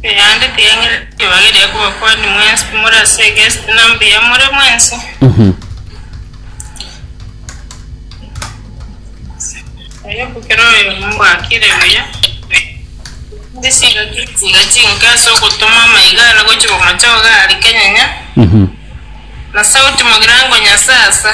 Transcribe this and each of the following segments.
Erinde tiyaing'ana ribaga eria kuba kwanyu mwensi, timori ase egesti na mbuya more mwensi. Oyo kera oyomo mbwakire buya, inde chiga chiga chinke ase ogotoma amaiga are gochia komochoga aria kenyanya, na sauti mogirango Nyasae asa.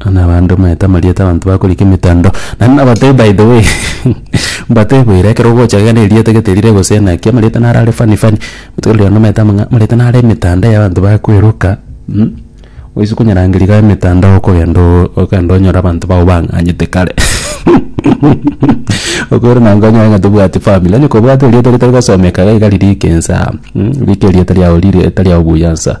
Buna abande omanyete amarieta abanto bakorika emetando, naende nabatebie by the way mbate boira ekero ogocha iga na erieta gete rire gose naki amarieta naro are funny funny botuko riria nomanyete amo ng'a amarieta naro emetanda ya abanto bakweroka oise konyerangeria iga emetanda okogenda oo okogenda onyore abanto bago bang'anyete kare okore na nko onyore ng'a tobwati family onye kobwate erieta ritari gosomeka iga riria ekensa rika erieta riago rire tari ao buya nsa.